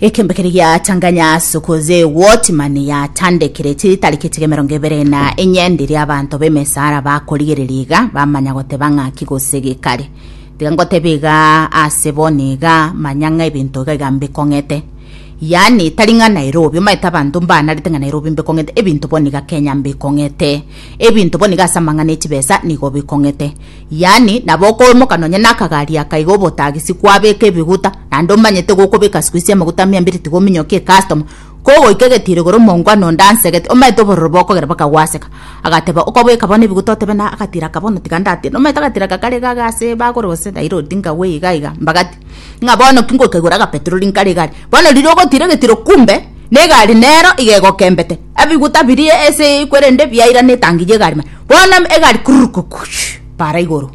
ekembe kere gia tanganya sukuze wotimani ya tandekire chitari kitige mirongo ibere na enyendi ria abanto b'emesara bakorigereria iga bamanya goteba ng'aki gose gikari tiga ngotebe iga ase boni iga manya ng'a ebinto iga iga mbikong'ete yani tari ng'a nairobi omaete abanto mbanarete ng'a nairobi mbikong'ete ebinto boni iga kenya mbikong'ete ebinto boni iga ase amang'ana echibesa nigo bikong'ete Yaani, nabo okoimoka nonya nakagari aka iga obotagisi kwabeka ebiguta, naende omanyete gokobeka sikuisi amaguta mia mbere tiga ominyokie ecustoma. Kogoika egetiiro igoro omonko ande onde ansegete, omanyete obororo bokogera mpaka gwaseka. Agateba, okobweka bono ebiguta otebe na agatiro aka bono tiga ndatire. Nomanyete agatiro aka kare iga ase bagore gose nairoti ngagwe iga iga mbagati. Ng'a bono ki ngoika igoro agapetroli nkare egari. Bono riria ogotira egetiro kumbe negari nero iga egokembete. Ebiguta biria ase kwerende biairana etangi ya egari. Bono egari kurrukukuch para igoro.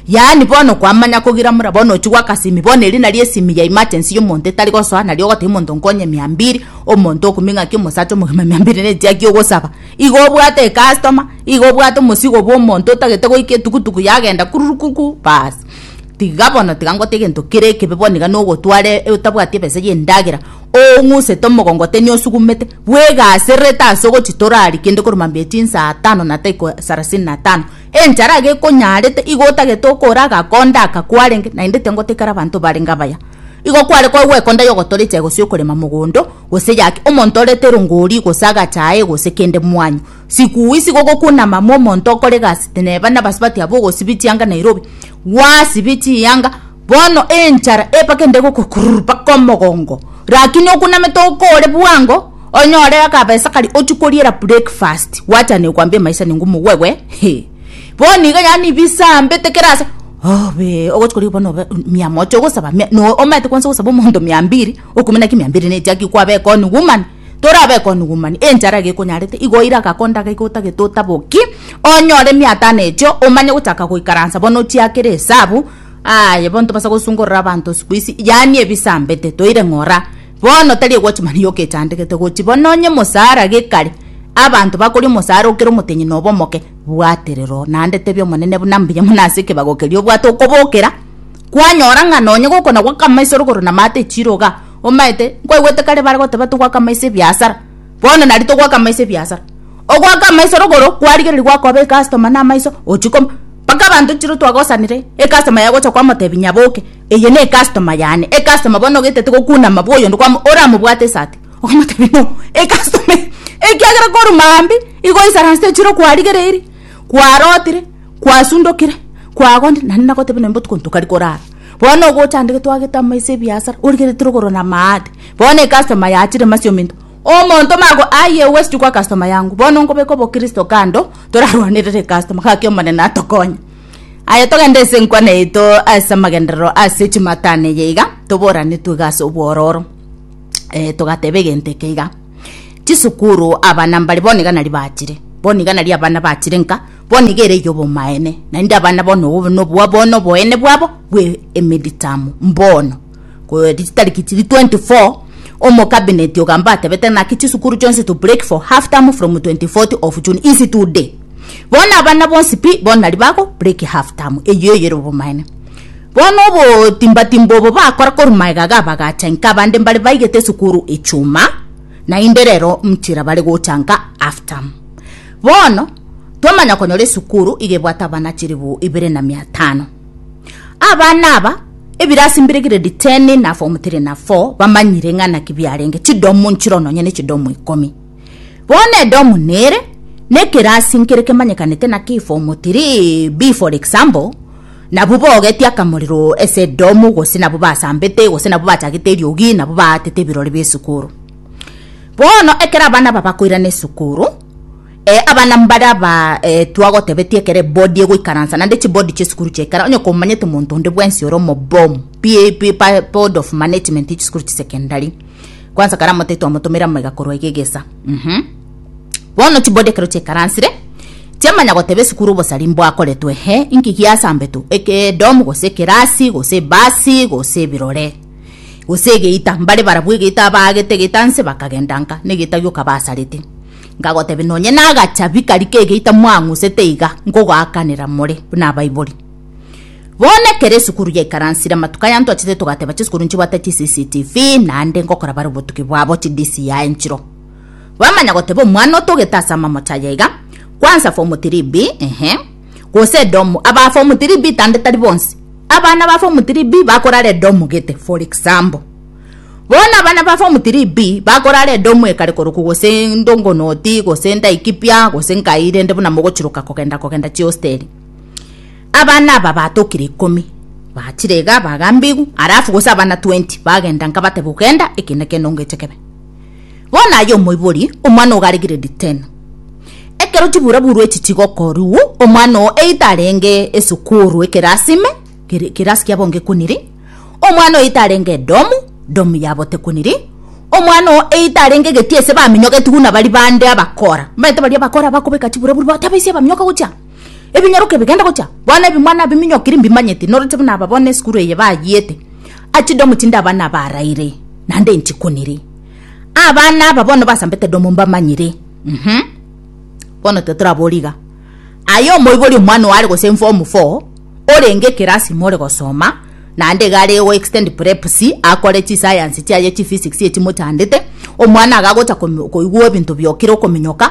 Yaani bono okwamanya kogira mura bono ochi gwaka simi bono eri nari esimi ya emergency ya omonto etari gosoa nari ogotebia omonto nkonye mia mbiri omonto okumia ng'aki omosacha omogima mia mbiri na echiaki ogosaba igo obwate ecustomer igo obwate omosigo bwa omonto otagete goika etugutugu yagenda kurrukuku baas tiga bono tiga ngote egento kere ekebe bono iga nogotwara otabwati ebesa ya endagera oong'usete omogongo otebia nosugummete. bwegasererete ase ogochitora aria kende korwa mambia chinsa atano na taiko sarasini na tano, enchara iga ekonyarete, igo otagete okora agakonda aka kwarenge, naende tengoteikera abanto barenge abaya. Igo kware koba gwekonda yogotora echae gose yokorema mogondo, gose yake omonto orete rongori gose agachae gose kende mwanyo. Sikuuis igo gokunama momonto okore egasi teneba nabasubati abo ogosibia chianga Nairobi, Gwasibie chiyanga bono enchara epake inde egokokururu mpaka omogongo, rakini okunamete okoore bwango onyore akabesa karia ochie koriera breakfast gwachana ekwambia emaisani ng'u mugwegwe hee bono iga yaani bisambete kera ase obee ogochia korigia bono obe mia moja ogosaba mia no omanyete kwansa ogosaba omonto mia mbiri okumenya ki mia mbiri nechi aki kwabeka on woman. Torabe konugumani enchara egekonyarete, igo oire agako ndaga iga otagete otaboki, onyore emiatano echio, omanye gochaka goikaransa bono ochiakere esabu, aye bono tobasa gosungorora abanto sikuisi, yaani ebisambete toire ng'ora, bono tari egwochi mani yoka echandegete gochi bono onye mosara gekare, abanto bakori omosara okere omotenyi nobe omoke, bwaterera oo, naende tebia Omonene buna mbuya buna ase ekebago keria obwate okobokera, kwanyora ng'a nonye gokona gwa kamaiso rogoro na maate chiroga, Omaete, nkwaigwete kare bare goteba togoaka amaiso ebiasara. Bono nari togoaka amaiso ebiasara. Ogoaka amaiso rogoro kwarigereria gwakoba ecustoma na amaiso ochikoma. Mpaka abanto chiro twagosanire ecustoma yaye gocha kwamotebia nyaboke eye ne ecustoma yane. Ecustoma bono ogetete gokunama bwa oyonde kwamo oramobwate esati. Okamotebia no ecustoma eye. Ekiagera korwa maambia igo esaranse chiro kwarigereirie, kwarotire, kwasundokire, kwagondire naende nagotebia nonya botuko ntokarikora. Bono ogocha ande getwagete amaiso ebiasara origerete rogoro na maate. Bono ecustoma yachire masi ominto. Omonto mago aye ogwechichwa kwa customa yangu. Bono nkobeka obokristo kando torarwanerere ecustoma gaki omonene atokonye. Aye togende ase enkwana yaito ase amagenderero ase chimatano eye iga toboranetwe iga ase obwororo. Eh togateba egento eke iga. Chisukuru abana mbare bono iga nari bachire. Bono iga nari abana bachire nka. Bono iga ere y'obomaene, naende abana bao nobobe nobwabo bono oboene bwabo bwe emeditamo. Mbono, korwa chitariki chiria 24, omokabineti ogamba atebete naki chisukuru chionsi to break for half term from 24th of June is today. Bono abana bonsi pi bono nari bago break half term. Eyio ere obomaene. Bono obotimbatimba obo bakora korwa magega ga bagacha nka abande mbare baigete esukuru echuma, naende rero mchira bare gocha nka half term. Bono, twamanya konyora esukuru iga ebwate abana chilifu ibere na mia tano. Abana aba, ebirasi mbire grade ten na form three na four, bamanyire ng'a naki biarenge, chidomu nchiro nonye ne chidomu ikomi. Bono edomu nere, na ekerasi nkere kemanyekanete naki form three B for example, nabwo baogetie akamorero ase edomu gose nabwo basambete gose nabwo bachagete eriogi nabwo baatete ebirori bia esukuru. Bono ekero abana aba bakoirana esukuru, abana mbare aba twagotebetie ekero ebodi egoikaransa naende chibodi chi'esukuru chiaikara, onye komanyete omonto onde bwensi ore omobomu, pi pi pa board of management ya chisukuru chia secondary, kwansa kare amote twamotomeire amaiga korwa iga egesa mh. Bono chibodi ekero chiaikaransire, chiamanya goteba esukuru obosari mbwakoretwe he, inki giasambetwe, eke edomu gose ekerasi gose ebasi gose ebirore. gose egeita, mbare barabwo egeita abaagete egeita nse bakagenda nka negeita gioka basarete. Nkagotebia, Nonye nagachabi karia kegeita mwang'usete iga, nkogoakanera more buna abaibori. Bono ekero esukuru yaikaransire, amatuko aya ntwachete togateba chisukuru nchibwate chi CCTV naende ngokora bare obotuki bwabo chi DCI nchiro. Bamanya goteba omwana otogete ase amamocho aya iga, kwansa form three B, eeh. gose Edomu, abafu omotiribi tande tari bonsi abana bafu omotiribi bakorara Edomu gete, for example. Bono abana bafu omotiribi bakorara Edomu ekare koroku gose ndongonoti gose ndaikipia gose nkai rende buna mogochiroka kogenda kogenda chiosteri. Abana aba batokire ikomi bachire iga bagambigu alafu gose abana 20 bagenda nkabateba ogenda eke nekende ongeche kebe. Bono aye omoibori, omwana ogo are grade ten. Ekero chibura burwa echi chigokorwu, omwana oo either arenge esukuru ekerasi ime, ekerasi kiabo ngekuniri, omwana oyo either arenge edomu, domu yabo tekuniri, omwana oo either arenge egetie ase baminyoketigwe na bari bande abakora, omanyete baria abakora abakobeka chibura burwa, taba ase abaminyoke gocha. Ebinyaroke bigende gocha, bono ebimwana biminyokiri mbimanyeti, norete buna aba bono esukuru eye bayiete. Ati domo tinde abana abaraire, naende nchikunire. Abana aba bono basambete domo mbamanyire. Mhm. Bono tiga torabore iga. Aye omoibori omwana oare gose in form four, orenge ekerasi ime ore gosoma, naende iga are go extend prep C, akore chisayansi chiaye chiphysics echimochandete, omwana iga agocha komi- koigwa ebinto biokire okominyoka,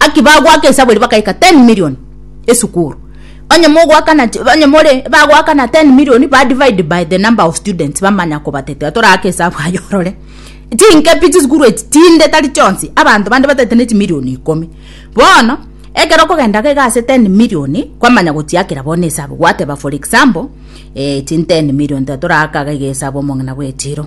Aki bagoaka esabu eria bakaika 10 million esukuru. Onye mogoakana onye more bagoakana 10 million ba divide by the number of students bamanya kobatetera toraake esabu aye orore. Chinkepi chisukuru echi chinde tari chionsi abanto bande batete ne chimillion ikomi. Bono ekero okogenda iga ase 10 million kwamanya gochiakera bono esabu gwateba for example eh chin 10 million tiga toraaka iga esabu omong'ina bw'echiro.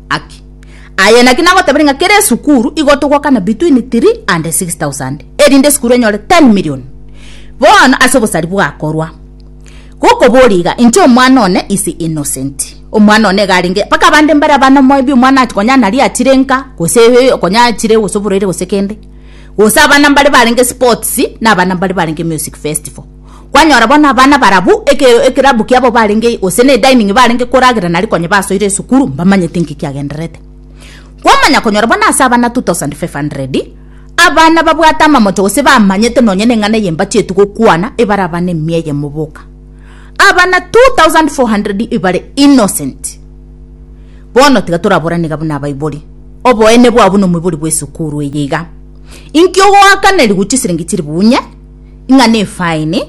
Aki, Aye naki nagoteberia ng'a kera esukuru igo togokana between three and six thousand erinde esukuru enyore ten million. Bono ase obosari bwakorwa gokoboria iga, inche omwana one is innocent. Omwana one iga arenge mpaka abande mbare abana maybe omwana achi konya naria achire nka gose konya achire gose oboraire gose kende. Gose abana mbare barenge sports na abana mbare barenge music festival. Kwanyora bono abana barabwo eke ekerabu kiabo barenge ei gose ne dining barenge koragera nari konye basoire esukuru mbamanyete inki kiagendererete. Kwamanya konyora bono ase abana 2500, abana babwate amamocho gose bamanyete nonye neng'ana eye mbachietu gokwana ebare abana emia eyemo boka. Abana 2400 ebare innocent. Bono tiga toraborane iga buna abaibori. Oboene bwao buna omoibori bw'esukuru eye iga. Inki ogoakaneriwu chisiringi chiri bunye? ng'a nefaini,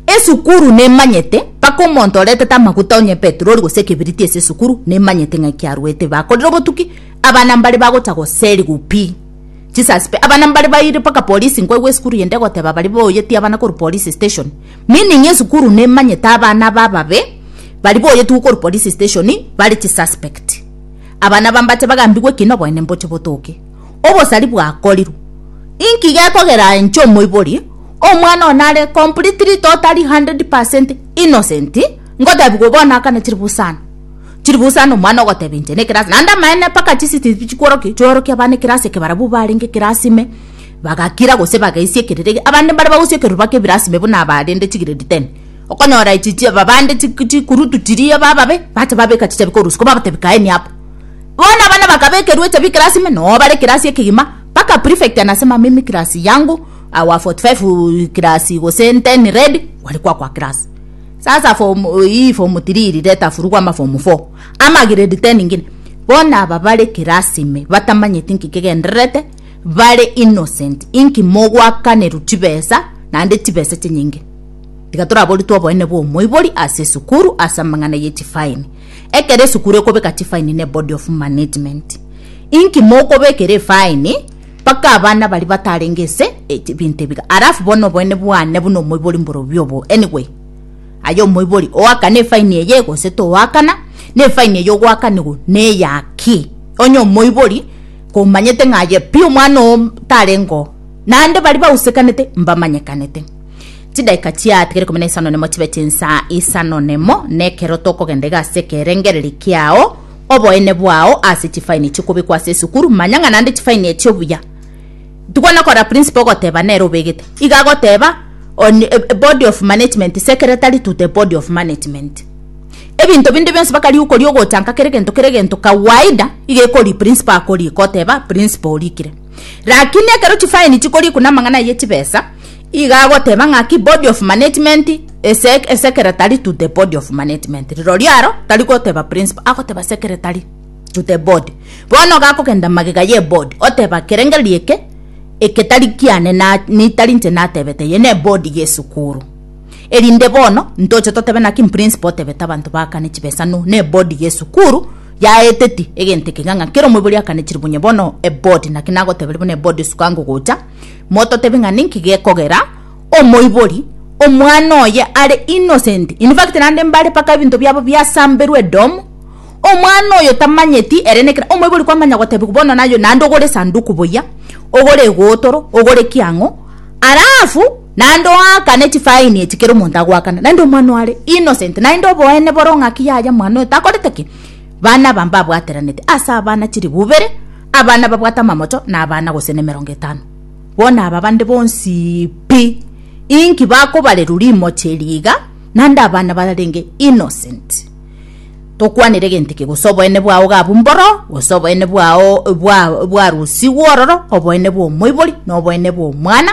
esukuru nemanyete mpaka omonto oretete amaguta onye epetroli gose ekebiriti ase esukuru nemanyete ng'a ekiaruete bakorire obotuki abana mbare bagocha goseriwa pi chisasipe abana mbare baire mpaka polisi nkoigwa esukuru ende egoteba baria baoyetie abana korwa polisi station meaning esukuru nemanyete abana aba ababe baria baoyetigwe korwa polisi station bare chisuspect abana aba mbache bagambigwe ekina oboene mboche botoke. obosari bwakorirwe. Inki gekogera inche omoibori, omwana one are completely totally 100 percent innocent, ngotebiwa bono akane chiribu sana? Chiribu sana omwana ogoteba inche ne class, naende amaene mpaka chi CCTV chikworokia chiorokia abana eclass eke barabwo barenge eclass ime, bagakira gose bagaisia ekerero egiya, abande mbare bagosia ekerero bake ebirasi ime buna abarende chi grade ten. Okonyora echi chi abande chi chikurutu chiria bababe, bacha babeka chichabi korwa isiko babatebi kaeni abwo. Bono abana bakabekerwa echabi class ime noo bare class ekegima mpaka prefect anasema mimi class yangu our 45 class gose 10 red gware kwakwa class sasa form hii form 3 iri reta furugwa ama form 4 ama grade 10 ingine bono aba bare class ime batamanyeti inki kegendererete bare innocent inki mogwakanerwa chibesa naende chibesa chinyinge tiga toraboritwe oboene bwa omoibori ase esukuru ase amang'ana ye chifine Ekero esukuru ekobeka chifaini ne body of management, inki mokobekera efaini mpaka abana baria batarenge ase ebinto ebiga? Alafu bono oboene bwane buna omoibori mborobio obo anyway aye omoibori oakane efaini eye gose toakana na efaini eye ogoakanigwa neyaki? Onye omoibori komanyete ng'a aye pi omwana oo tarenge oo naende baria bausekanete mbamanyekanete. Chidaika chiatigere ikomi na isano nemo chibe chinsa isano nemo, nekero tokogenda iga ase ekerengererio kiao, oboene bwao ase chifaini chikobekwa ase esukuru, manya ng'a naende chifaini echio buya. Tigwa nokora principal ogoteba nere obegete. Iga agoteba on a a body of management, secretary to the body of management. Ebinto binde bionsi mpaka riokoria ogochanka kera egento kera egento kawaida, iga ekoria principal akorika oteba principal orikire. Rakini ekero chifaini chikorikwa na amang'ana ayio echibesa, Iga agoteba ng'aki body of management ase secretary to the body of management rirorio aro tari goteba principal agoteba secretary to the body bono gakogenda magega ye body oteba kerengererio eke eke tari kiane tari inche natebete eye ne body ye sukuru erinde bono ntoche totebe naki principal otebete abanto bakane chibesa no ne body ye sukuru yaeteti egento eke ng'a kera omoibori akane chiribunye bono a body naki nagoteberia buna a body isiko ango gocha. Mototebe ng'a ninki gekogera omoibori, omwana oye are innocent, in fact naende mbare mpaka ebinto biabo biasamberwe edomu, omwana oyo tamanyeti ere nekina, omoibori kwamanya gotebigwa bono naye oyo naende ogore esanduku buya, ogore egotoro, ogore ki ang'o, alafu naende oakane chifaini echi kera omonto agoakana, naende omwana oyo are innocent, naende oboene boro ng'aki yaya mwana oyo takorete ki. Bana aba mbabwateranete ase abana chilifu ibere, abana babwate amamocho na abana gose nemerongo etano. Bono aba bande bonsi pi, inki bakobarerwa rimochi eri iga? Naende abana bararenge innocent. Tokwanire gento eke, gose oboene bwao iga abwo mboro, gose oboene bwao bwa bwarusigwe ororo, oboene bwa omoibori, na oboene bwa omwana,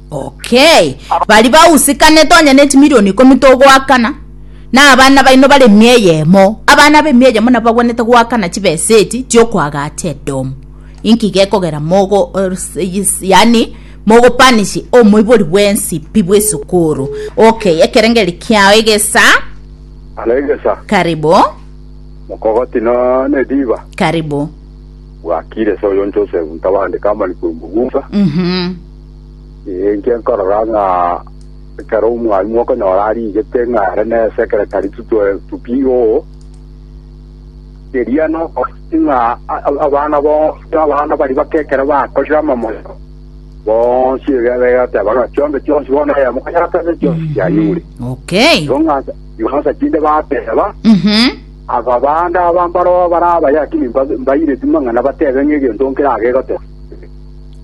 Okay. Bari bausikanete onye ne chimilioni ikomi togoakana na abana baino bare emia eyemo. Abana b'emia eyemo nabo bagwenerete goakana chibesa echi chiokoagacha edomu. Inki gekogera mogo or- s- is- yani mogopanishi omoibori bwensi pi bw'esukuru. Okay, ekerengeri kiao egesa. Halo egesa Karibu, mokogoti no nediba karibu. bwakire so yonchosebu ntabandika amani kwemugusa Mhm. Inche nkorora ng'a ekero omwami okonyora arigete ng'a are nesekeretari tupiga oo, eria nokosi ng'a abana bonsi abana baria bake ekero bakorire amamoyo, bonsi erio abe agateba ng'a chionsi chionsi bono aya mokonyatanire chionsi chianyure. Okay. Igo ng'ansa igo ng'ansa chinde bateba Mhm. aba bande aba mbaroo barabaya lakini mba- mbaireti mang'ana batebe ng'a egento nkere agegoteba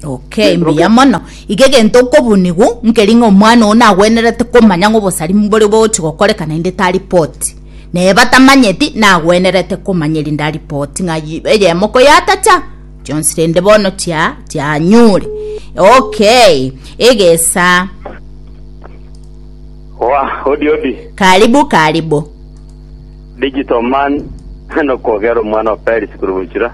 Okay, mbuya mono. Iga egento okobunigwa nkeri ng'a omwana oo nagwenerete komanya ng'a obosarimi mbore bogochi gokoreka naende taripoti. Naye batamanyeti nagwenerete komanya erinde aripoti ng'a yi- eyemo koyatacha chionsi rende bono chia chianyure. Okay, egesa. Oa, odi odi. Karibu karibu. Digital man, nokogera omwana o Paris korwa gochira.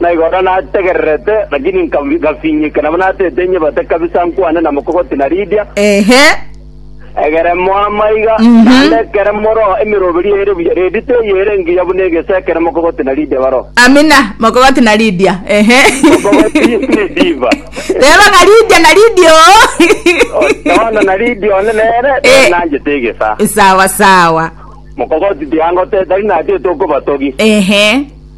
Na igoro nategererete, lakini ngafinyika, nabo natete inyebate kabisa nkwane na mokogoti na Lidia, Ehe. egeremo amaiga, naende ekeremo roho, emeroberi ere buya redi teyere engiya buna egese, ekero mokogoti na Lidia baroho. Amina. Mokogoti na Lidia. Ehe. Mokogoti ne diva. Teba ng'a Lidia na Lidia oo. Yohana na Lidia one nere, Eh. nere nanchete egesa. Sawa sawa. Mokogoti tiangoteta, tari natete okobatogi. Ehe.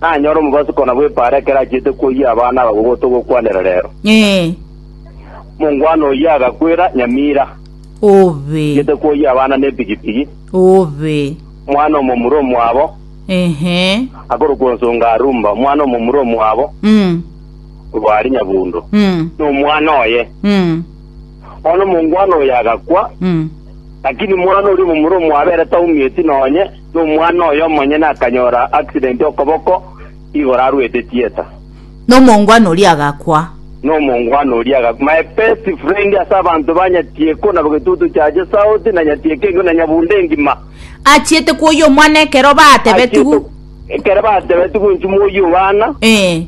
Nanyore omobaso kona bw'epaara ekero achiete koyia abana aba gogoto gokwanera reero. Ee. Mongwana oyio agakwera Nyamira, Obe. achiete koyia abana nepigipigi, Obe. omwana omomura omwabo Ehe. akorokwa onsonga Arumba, omwana omomura omwabo Mm. Rwari Nyabundo, Mm. na omwana oye. Mm. Bono mongwana oyo agakwa, Mm. lakini mwana oria omomura omwabo ere taumieti nonye, Nomwana oye omonyene akanyora accident okoboko igoro arwete theatre. Nomongwana oria agakwa. Nomongwana oria agakwa. My best friend ase abanto ba Nyatieko na Getutu Church South na Nyatieko engi'ma na Nyabunde engi'ma. Achiete kwoyia omwana ekero batebetigw. Achiete ekero batebetigw nchumwa oyie obana. Ee.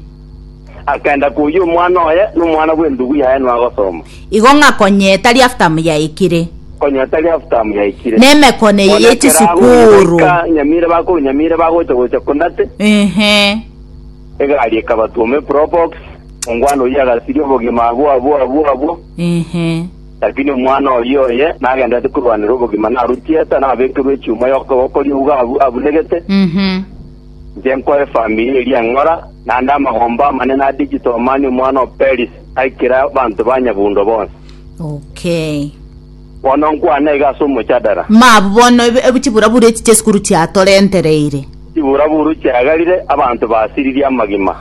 Akaenda koyia omwana oye, na omwana bw'endugu yaye nwagosoma. Igo ng'a konya etari aftamu yaikire. Konya etari aftamu yaikire. Na emekone eye ye chisukuru. Nyamire bakuru nyamire bagocha gocha kondate. Ehe. Egari ekabatwoma eprobox. Omgwana oyio agasiria obogima abwo abwo abwo abwo. Ehe. Lakini omwana oyio oye nagenderete korwanera obogima naru chieta, nabekerwe echuma y'okoboko ri'uga abu abunegete. Ehe. Inche nkoe efamiri eria eng'ora, naende amagomba amanene a digital mani omwana o Perisi aikire abanto ba nyabuundo bonsi. Okay. Bono nkwane iga ase omochadara. Mabu bono eb- eb- chiburaburu echi chiesukuru chiatorentereire. Chiburaburu chiagarire, abanto basiririe amagima.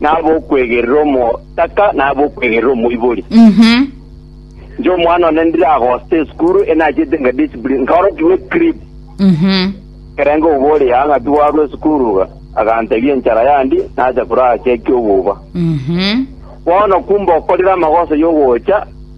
na ab'okwegerera omotaka, na ab'okwegerera omoibori. Mhm. Inche omwana one ndiragosta esukuru enachete nga discipline nkaorokigwa ecrip Mhm. kerenge obore yanga tiwarwa esukuru iga agantebia enchara yandi nacha korachia ekiobuba Mhm. bono kumbe okorire amagoso yogocha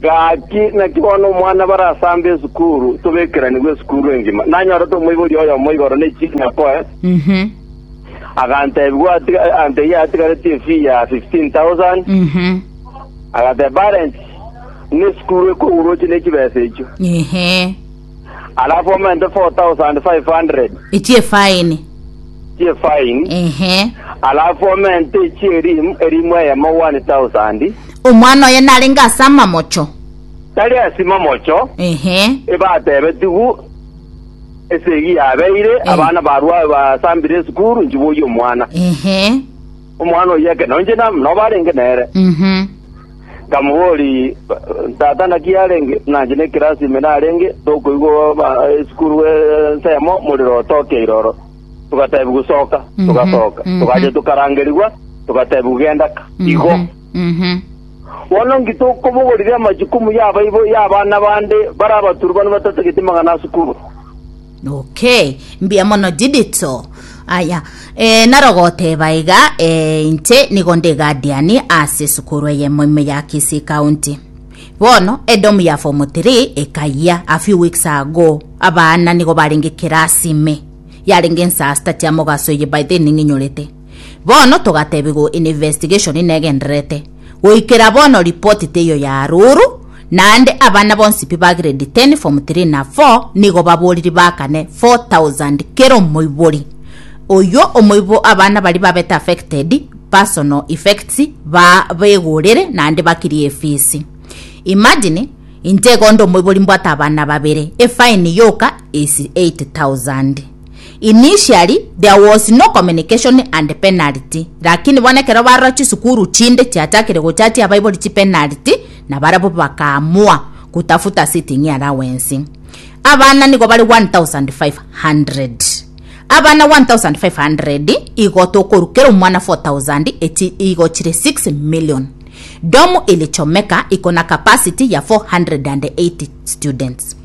Gaki, naki bono omwana barasambe esukuru, tobekeranigwe esukuru engima. Nanyorete omoibori oyomo igoro ne chinyako, agantebigwa ati- agantebia atigareti efee ya 15,000. Agateba, Parents, buna esukuru ekourwa oche ne chibesa echio. Ehe. Arafomente 4,500 Echi'efaini. chi'efaini, Ehe. arafomente echi'erimu erimu eyemo 1,000, Omwana oye narenge ase amamocho. tari ase mamocho, Ehe. ebatebetigwu esegi yabeire, abana barwa basambire esukuru, nchiboyie omwana. Ehe. Omwana oyio ekero nainche nam- noba arenge nere, Mhm. nkamobori tata naki arenge nanche ne class ime narenge tokoigwa ba esukuru ensemo morero otoke iroro. Togatebiwa soka, Mhm, togasoka. mhm. Togacha tokarangerigwa, togatebiwa genda ka. Igo. Mhm. Mhm. Bono nki tokobogorire amachukumu y'abaibo y'abana bande bare abaturubani batatagete magana asukuru? Okay, mbuya mono Didito. Aya, eh, narogoteba iga eh, inche nigo ndi guardian ase esukuru eyemo ime ya Kisii County. Bono edomu ya form 3 ekayia a few weeks ago abana nigo barenge class ime yarenge nsasta tia mogaso eye by then ning'inyorete Bono togatebigwa investigation negendererete. Goikera bono report teiyo ya aroro, naende abana bonsi pi ba grade ten, form three na four nigo baboriri bakane four thousand kera omoibori. Oyio omoibo abana baria babete affected personal effects ba begorere naende bakirie efees. Imagine inche igo nde omoibori mbwate abana babere, efine yoka is eight thousand. Initially there was no communication and penalty lakini bono ekero barora chisukuru chinde chiachakire gochatia abaibori chipenalty nabarabwo bakaamua kutafuta sitting allowance abana nigo bare 1500 abana 1500 igo tokoru kera omwana 4000 echi igo chire 6 million domu ilichomeka iko na capacity ya 480 students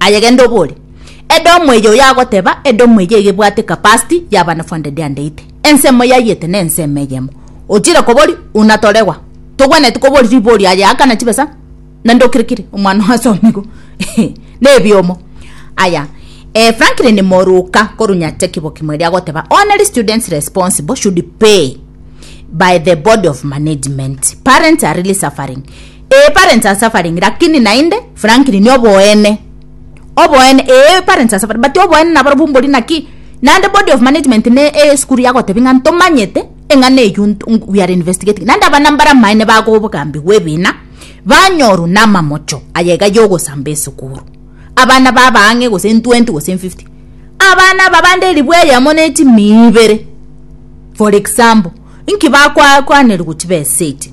Aye genda obore, Edomu eye oyo agoteba, Edomu eye iga ebwate capacity ya abana 480. Ensemo yaiyete na ensemo eyemo. Ochire kobori, Una toregwa. Togwenereti kobori ribori aye akana chibesa na ndokirikiri omwana oase omigo. Nebiomo. Aya, eh, Franklin Moruka koru Nyacheki Bokimweri agoteba, Only students responsible should pay by the body of management. Parents are really suffering. Ee parents are suffering lakini naende Franklin oboene oboene ee parents are suffering but oboene nabarobwo mbori naki naende body of management ne esukuru yagotebi ng'a ntomanyete eng'ana eyio we are investigating naende abana mbare amaene bago obogambi bwa ebina banyorwa na amamocho aya iga yogosamba esukuru abana baba ang'e gose in 20 gose in 50 abana aba bande eribwa eyemo ne chimia ibere for example inki bakwa kwanerigwa chibesa echi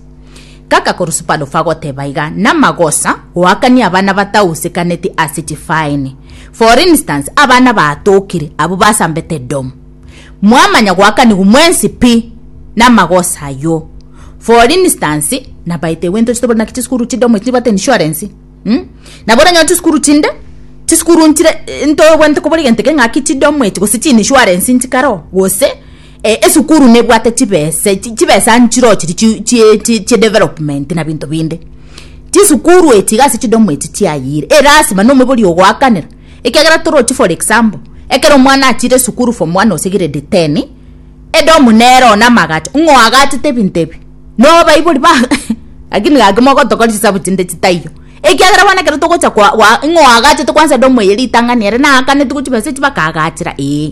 Gaka korwa Supado fagoteba iga namagosa goakania abana batausekaneti ase chifaini. For instance abana baatokire abwo basambete dom. Mwamanya goakanigwa mwensi pi namagosa ayio. For instance nabaete gento chitobore naki chisukuru chidomo echi nibate insurance mm? Nabo oranyora chisukuru chinde chisukuru nchire ntobwente kobori gento eke ngaki chidomo echi gose chinishuarensi nchikaro gose Eh esukuru nebwate chibese chibesa nchiroche chi chi chi development na binto binde chisukuru echi gasi chidomu echi chiayire e lasima no omobori ogoakanera ekiagera torochi for example ekero omwana achire esukuru form one gose grade ten edomu nero na amagacho ng'o agachete ebinto ebi no baibori ba lakini gaki mogotokora chisabu chinde chitaiyo ekiagera bono ekero togocha kwa kwa ng'o agachete kwansa edomu eye ritang'ani ere naakaneti gochibesa echi bakaagachera ee.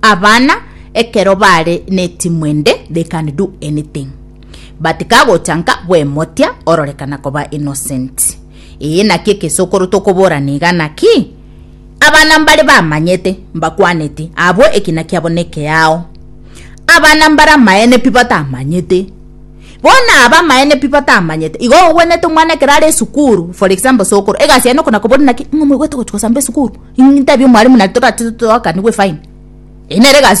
Abana, ekero baare netimwa ende, they can do anything, but kagocha nka bw'emotia ororekana koba innocent. Eye naki egesokoro tokoborana iga naki? Abana mbare bamanyete, mbakwaneti, abwo ekina kiabo nekeao. Abana mbare amaene pi batamanyete. Bono aba amaene pi batamanyete. Igo ogwenerete omwana ekero are esukuru, for example sokoro, egasi yaye noko nakoboria naki, ing'o moigwete gochi gosamba esukuru? Intabie omwalimu naende toratete toakaniwe fine. Eyio nere egasi.